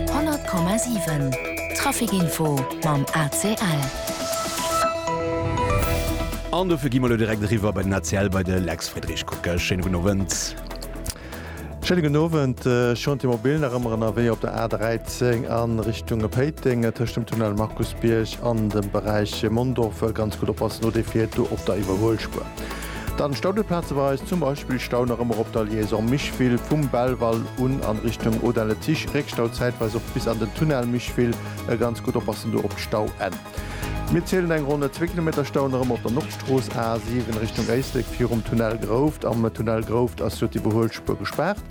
100,7 Trafic Info mam ACL. An dofir gi mer elo direkt eriwwer bei den ACL, bei de Lex Friedrich. Kucke, schéine gudden Owend. Schéine gudden Owend. Chantier mobile nach ëmmer ënnerwee op der A13 a Richtung Péiteng, tëscht dem Tunnel Markusbierg an dem Beräich Mondorf. Ganz gutt oppassen, no dee fiert do op der Iwwerhuelspuer. Dann Staudelplaze bei eis, zum Beispill Stau nach ëmmer op der Liaison Micheville vum Belval un an Richtung Audun le Tiche, Réckstau zäitweis och bis an den Tunnel Micheville, e ganz gutt oppassen do op d'Stauenn. Mir zielen eng ronn zwee Kilometer Stau nach ëmmer op der Nordstrooss A 7 Richtung Éislek virum Tunnel Grouft. Am Tunnel Grouft ass jo d'Iwwerhuelspuer gespaart.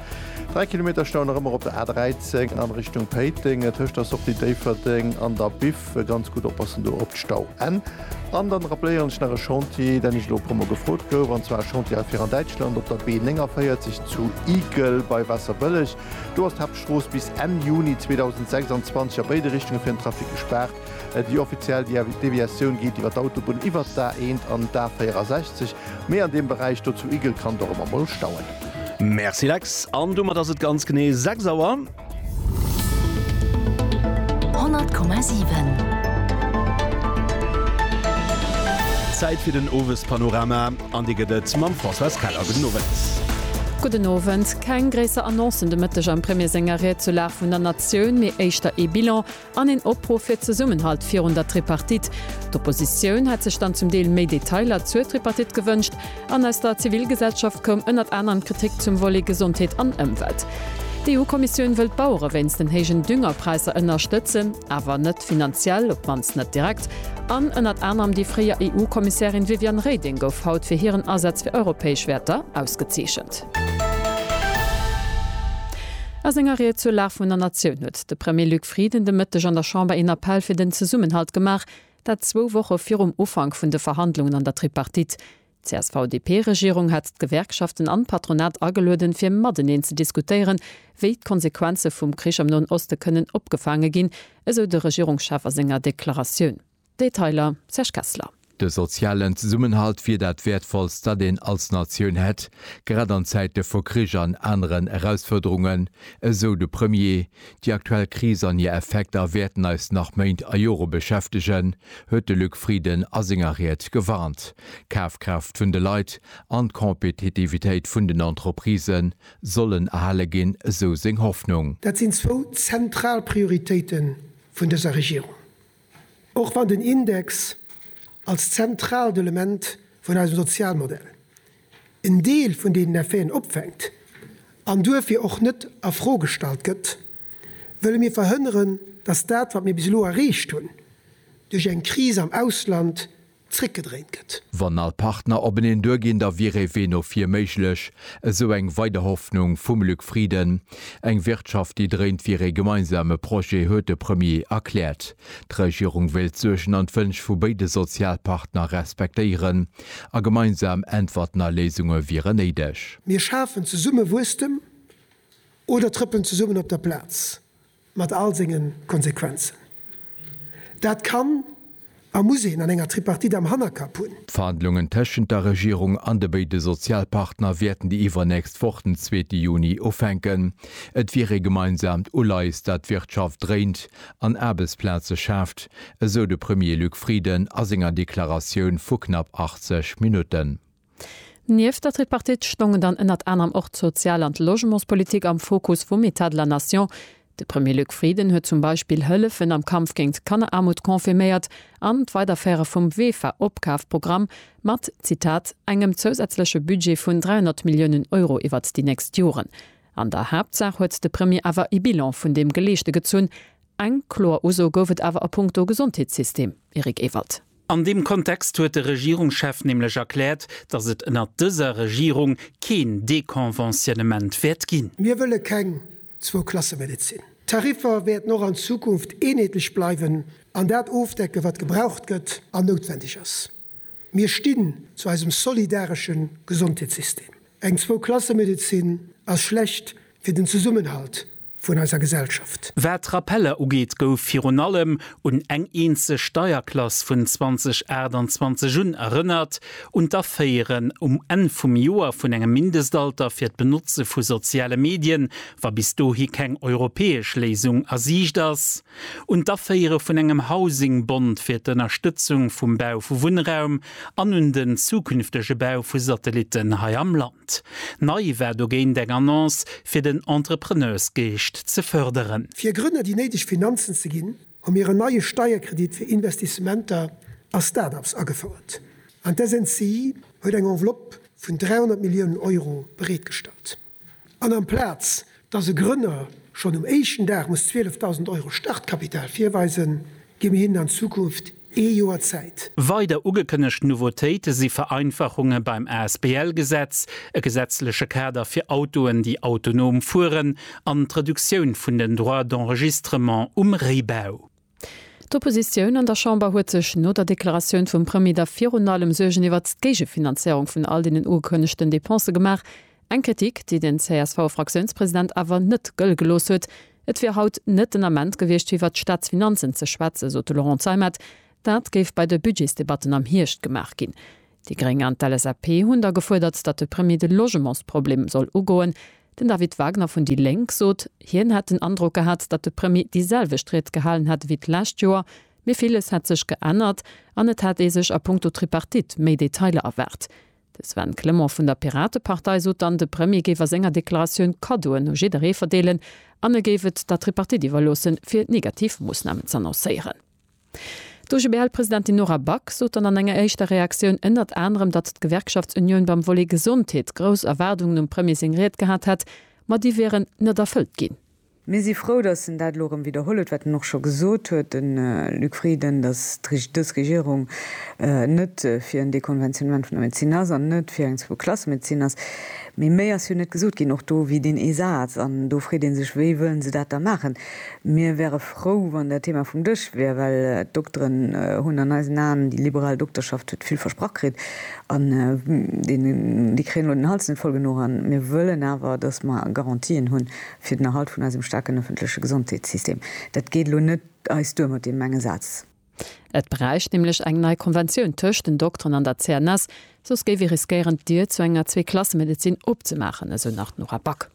Dräi Kilometer Stau nach ëmmer op der A 13 an Richtung Péiteng tëscht der Sortie Déifferdeng an der Biff. Dierf ganz gutt oppassen do op d'Stau Enn. An dann rappléieren ech nach e Chantier, deen ech elo e puer Mol gefrot gouf, an zwar e Chantier hei fir an Däitschland op der B 49 zu Igel bei Wasserbëlleg. Do ass d'Haaptstrooss bis Enn Juni 2026 a béide Richtunge fir den Trafic gespaart. Déi offiziell Deviatioun geet iwwer d'Autobunn iwwert d'A 1 an d'A 64, mee an deem Beräich do zu Igel kann et och ëmmer mol stauen. Merci Lex, an domat ass et ganz genee 6 Auer. Zäit fir den Owespanorama an dee gëtt et mam Françoise Keller. Gudden Owend. Gudden Owend. Keng gréisser Annoncen de Mëtteg am Premier senger Ried zur Lag vun der Natioun, mee éischter ee Bilan An een Opruff fir Zesummenhalt virun der Tripartite. D'Oppositioun hätt sech dann zum Deel méi Detailer zur Tripartite gewënscht. An aus der Zivilgesellschaft koum ënnert anerem Kritik zum Volet Gesondheet an Ëmwelt. D'EU-Kommissioun wëll d'Bauere wéinst den héijen Düngerpräisser ënnerstëtzen, awer net finanziell, op d'mannst net direkt. An ënnert anerem déi fréier EU-Kommissärin Viviane Reding gouf haut fir hiren Asaz fir europäesch Wäerter ausgezeechent. A senger Ried zur Lag vun der Natioun huet de Premier Luc Frieden de Mëtteg an der Chamber een Appell fir den Zesummenhalt gemaach, dat zwou Woche virum Ufank vun de Verhandlungen an der Tripartite. D'CSV-DP-Regierung hat d'Gewerkschaften an d'Patronat agelueden, fir mateneen ze diskutéieren, wéi d'Konsequenze vum Krich am Noen Oste kënnen opgefaange ginn, esou de Regierungschef a senger Deklaratioun. Detailer, Serge Kessler. De sozialen Zesummenhalt wier dat Wäertvollst, dat een als Natioun hätt, grad an Zäite vu Krich an aneren Erausfuerderungen, esou de Premier. Déi aktuell Kris an hir Effekter wäerten eis nach Méint a Jore beschäftegen, huet de Luc Frieden a senger Ried gewarnt. D'Kafkraaft vun de Leit an d'Kompetitivitéit vun den Entreprisë sollen erhale ginn, esou seng Hoffnung. Dat sinn zwou zentral Prioritéite vun dëser Regierung. Och wann den Index als zentraalt Element vun eisem Sozialmodell en Deel vun deenen Effeten opfänkt an duerfir och net a Fro gestallt gëtt, wëlle mir verhënneren, dass dat, wat mir bis elo erreecht hunn, duerch eng Kris am Ausland zréckgedréint gëtt. Wann all Partner openeen duerginn, da wier ee Wee no vir méiglech, esou eng weider Hoffnung vum Luc Frieden. Eng Wirtschaft, déi dréint, wier ee gemeinsame Projet, huet de Premier erkläert. D'Regierung wéilt d'Suergen an d'Wënsch vu béide Sozialpartner respektéieren a gemeinsam Äntwerten a Léisunge wieren néideg. Mir schafen zesumme Wuesstem oder trëppelen zesummen op der Plaz, Mat all senge Konsequenzen. Dat kann a muss een an enger Tripartite am Hannerkapp hunn. D'Verhandlungen tëschent der Regierung an de béide Sozialpartner wäerten déi iwwernächst Woch, den zweete Juni, ufänken. Et wier ee gemeinsaamt Uleies, dat d'Wirtschaft dréint an Aarbechtsplaze schaaft, esou de Premier Luc Frieden a senger Deklaratioun vu knapp 80 Minutten. Nieft der Tripartite stongen dann ënnert anerem och d'Sozial an d'Logementspolitik am Fokus vum Etat de la Nation. De Premier Luc Frieden huet zum Beispill Hëllefen am Kampf géint d'Kanneraarmut confirméiert an d'Weiderféiere vum WEFA-Opkafprogramm mat, Zitat, engem zousätzleche Budget vun 300 Milliounen Euro iwwert déi nächst Joren. An der Haaptsaach huet de Premier awer e Bilan vun deem Geleeschte gezunn. Eng kloer Uso gouf et awer a punkto Gesondheetssystem, Eric Ewald. An deem Kontext huet de Regierungschef nämlech erkläert, datt et ënnert dëser Regierung keen Deconventionnement wäert ginn. Mir wëlle keng Zwou-Klasse-Medezin. D'Tariffer wäerten och an Zukunft eenheetlech bleiwen an dat ofdecken, wat gebraucht gëtt an noutwendeg ass. Mir stinn zu eisem solidaresche Gesondheetssystem. Eng Zwou-Klasse-Medezin ass schlecht. Fir den Zesummenhalt vun eiser Gesellschaft. Wat d'Rappeller ugeet, gouf virun allem un eng eenzeg Steierklass vun 2028 un erënnert, un d'Aféieren um Enn vum Joer vun engem Mindestalter fir d'Benotze vu soziale Medien, wa bis dohi keng europäesch Léisung a Siicht ass, un d'Aféiere vun engem Housing-Bond fir d'Ënnerstëtzung vum Bau vu Wunnraum an un den zukünftege Bau vu Satellitten hei am Land. Konzept. Nei war dogéint eng Annonce fir den Entrepreneursgeescht ze fërderen. Fir Grënner déi néideg Finanzen ze ginn, hu mir en neie Steierkredit fir Investissementer a Start-ups agefouert an d'SNCI huet eng Enveloppe vun 300 Milliounen Euro bereetgestallt. An amplaz Dass e Grënner schonn um éischten Dag muss 12.000 Euro Startkapital virweisen, gi mir hinnen an Zukunft ee Joer Zäit. Weider ugekënnegt Nouveautéite si Vereinfachunge beim Asbl-Gesetz, e gesetzleche Kader fir Autoen, déi autonom fueren an d'Reduktioun vun den Droits d'enregistrement um Réibau. D'Oppositioun an der Chamber huet sech no der Deklaratioun vum Premier da virun allem Suergen iwwert d'Géigefinanzéierung vun all deenen ugekënnegten Depensë gemaach. Eng Kritik, déi den CSV-Fraktiounspresident awer net gëlle gelooss huet. Et wier haut net den Ament gewiescht, fir iwwert d'Staatsfinanzen ze schwätzen, sot de Laurent Zeimet. Dat géif bei de Budgetsdebatten am Hierscht gemaach ginn. Déi Gréng an d'LSAP hunn da gefuerdert, datt de Premier de Logementsproblem soll ugoen. Den David Wagner vun déi Lénk sot, hien hätt den Androck gehat, datt de Premier déi selwecht Ried gehalen hätt ewéi d'lescht Joer, mee villes hätt sech geännert an et hätt ee sech a Punkto Tripartite méi Detailer erwaart. De Sven Clement vun der Piratepartei sot dann, de Premier géif a senger Deklaratioun Kaddoen u jidderee verdeelen an e géif et der Tripartite iwwerloossen, fir negativ Moossnamen z'annoncéieren. D'OGBL-Presidentin Nora Back sot dann an enger éischter Reaktioun ënnert anerem, datt d'Gewerkschaftsunioun beim Volet Gesondheet grouss Erwaardungen um Premier seng Ried gehat hätt, ma déi wieren net erfëllt ginn. Mir si frou, datt en dat elo erëm widderholl huet, wat en och scho gesot huet, de Luc Frieden, datt dës Regierung net fir en Dekonventionnement vun der Medezin ass an net fir eng Zwou-Klasse-Medezin ass. Mee méi ass jo net gesot ginn, och do wier deen ee Saz an do freet ee sech, wéi wëllen se dat da maachen? Mir wäre frou, wann dat Thema vum Dësch wier, well d'Dokteren hunn an eisen Aen, déi liberal Dokterschaft huet vill versprach kritt an déi kréien elo den Hals net voll genuch. A mir wëllen awer, datt mer Garantien hu fir den Erhalt vun eisem staarken ëffentleche Gesondheetssystem. Dat geet elo net eis duer mat deem enge Saz. Et bräicht nämlech eng nei Konventioun tëscht den Dokteren an der CNS, soss géif ee riskéieren, d'Dier zu enger Zweeklassemedezin opzemaachen, esou nach d'Nora Back.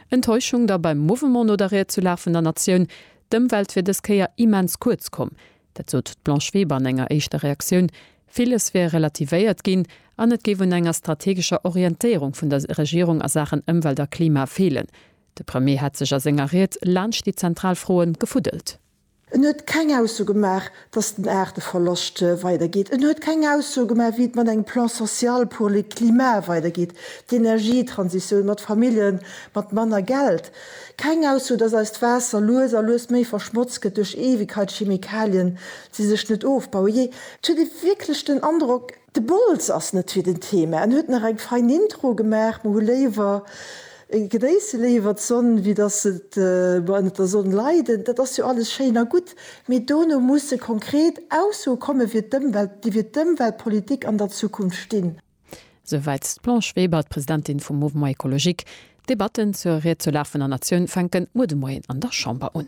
Enttäuschung da beim Mouvement no der Ried zu La vun der Natioun, D'Ëmwelt wier dës Kéier immens kuerz komm. Dat sot d'Blanche Weber an enger éischter Reaktioun. Villes wier relativéiert ginn an et géif un enger strategescher Orientéierung vun der Regierung a Saachen Ëmwelt a Klima feelen. De Premier hätt sech a senger Ried laanscht déi zentral Froe gefuddelt. En huet keng Ausso gemaach, dass den Aarteverloscht weidergeet. En huet keng Ausso gemaach, wéi et mat engem Plan social pour le climat weidergeet, d'Energietransitioun, mat Famillje mat manner Geld. Keng Ausso, dass eist Waasser lues a lues méi verschmotzt gëtt duerch Ewigkeitschemikalien, déi sech net ofbauen. Jee, et huet ee wierklech den Androck, De Bols ass net fir den Thema, en huet nach eng fein Intro gemaach, mer hu léiwer, genéisse léiwer d'Sonn, wéi dass et mer ënnert der Sonn leiden. Dat ass jo alles schéin a gutt, mee dono musse konkret Aussoe komme fir d'Ëmwelt, déi fir d'Ëmweltpolitik an der Zukunft stinn. Souwäit d'Blanche Weber, d'Presidentin vum Mouvement Ecologique. D'Debatten zur Ried zur Lag vun der Natioun fänken muer de Moien an der Chamber un.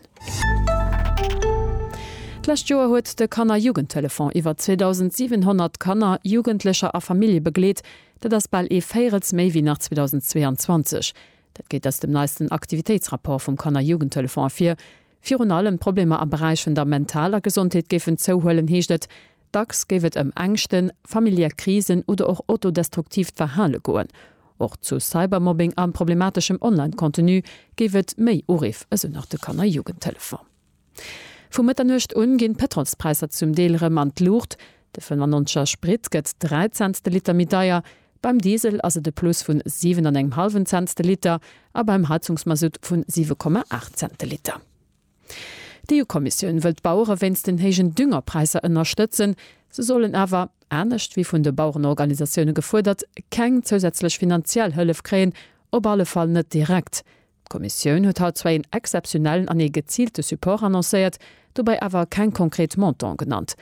D'lescht Joer huet de Kanner-Jugendtelefon iwwer 2.700 Kanner, Jugendlecher a Famillje begleet. Dat ass bal ee Véirels méi wéi nach 2022. Dat geet aus dem neisten Aktivitéitsrapport vum Kanner-Jugendtelefon ervir. Virun allem d'Problemer am Beräich vun der mentaler Gesondheet géifen zouhuelen, heescht et. Dacks géif et ëm Ängschten, familiär Krisen oder och autodestruktiivt Verhale goen. Och zu Cybermobbing a problemateschem Online-Contenu géif et méi Uriff, esou nach de Kanner Jugendtelefon. Vu Mëtternuecht un ginn d'Pëtrolspräisser zum Deel erëm an d'Luucht. De 95 er Sprit gëtt 3 Cents de Liter méi deier, beim Diesel ass et e Plus vun 7 an engem hallwen Cents de Liter a beim Heizungsmasutt vun 7,8 Cents de Liter. D'EU-Kommissioun wëll d'Bauere wéinst den héijen Düngerpräisser ënnerstëtzen. Se sollen awer, anescht wéi vun de Bauerenorganisatioune gefuerdert, keng zousätzlech finanziell Hëllef kréien, op alle Fall net direkt. D'Kommissioun huet haut zwar een exzeptionellen an ee geziilte Support annoncéiert, dobäi awer keng konkret Montanten genannt.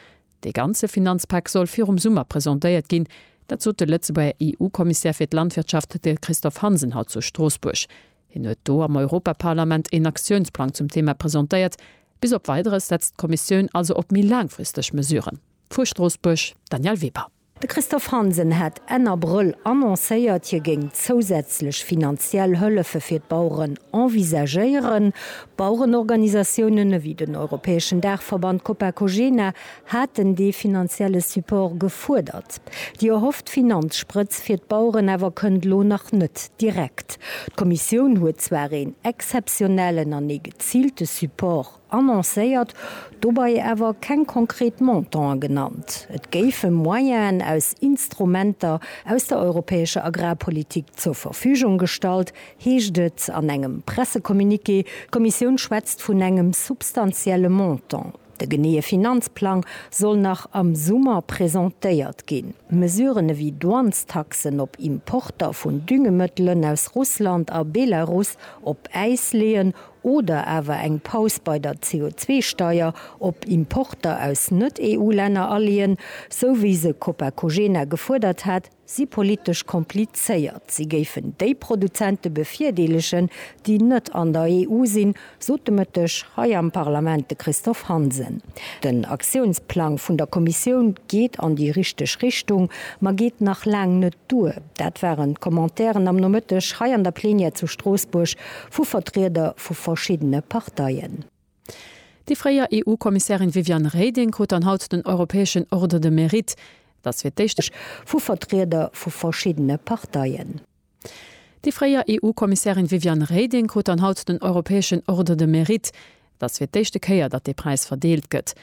Dee ganze Finanzpak soll virum Summer presentéiert ginn. Dat sot de Lëtzebuerger EU-Kommissär fir d'Landwirtschaft, de Christophe Hansen, haut zu Stroossbuerg. Hien huet do am Europaparlament een Aktiounsplang zum Thema presentéiert. Bis op Weideres setzt d'Kommissioun also op méi laangfristeg Mesuren. Vu Stroossbuerg, Danièle Weber. De Christophe Hansen hat Enn Abrëll annoncéiert, hie géing zousätzlech finanziell Hëllefe fir d'Baueren envisagéieren. Bauerenorganisatiounen ewéi den europäeschen Daachverband Copacogena haten dee finanzielle Support gefuerdert. Déi erhofft Finanzsprëtz fir d'Baueren awer kënnt elo nach net direkt. D'Kommissioun huet zwar een exzeptionellen an ee geziilte Support annoncéiert, dobei awer keng konkret Montantë genannt. Et géife Moyenen aus Instrumenter aus der europäescher Agrarpolitik zur Verfügung gestallt, heescht et an engem Pressecommuniqué. D'Kommissioun schwätzt vun engem substantielle Montant. De geneeë Finanzplang soll nach am Summer presentéiert ginn. Mesuren ewéi Douanestaxen op Importer vun Düngemëttelen aus Russland a Belarus op Äis leeën oder awer eng Paus bei der CO2-Steier op Importer aus Net-EU-Länner aleeën, sou wéi se Copacogena gefuerdert hat, si politesch komplizéiert, si géifen déi Produzente bevirdeelegen, déi net an der EU sinn, sot de Mëtteg hei am Parlament de Christophe Hansen. Den Aktiounsplang vun der Kommissioun geet an déi richteg Richtung, ma geet nach laang net duer. Dat waren d'Commentairen am Nomëtteg hei an der Plenière zu Stroossbuerg vu Vertrieder vu verschiddene Parteien. Déi fréier EU-Kommissärin Viviane Reding krut dann haut den europäeschen Ordre de Mérite. Et ass fir d'éischt. Vu Vertrieder vu verschiddene Parteien. Déi fréier EU-Kommissärin Viviane Reding krut dann haut den europäeschen Ordre de Mérite. Et ass fir d'éischte Kéier, datt dee Präis verdeelt gëtt.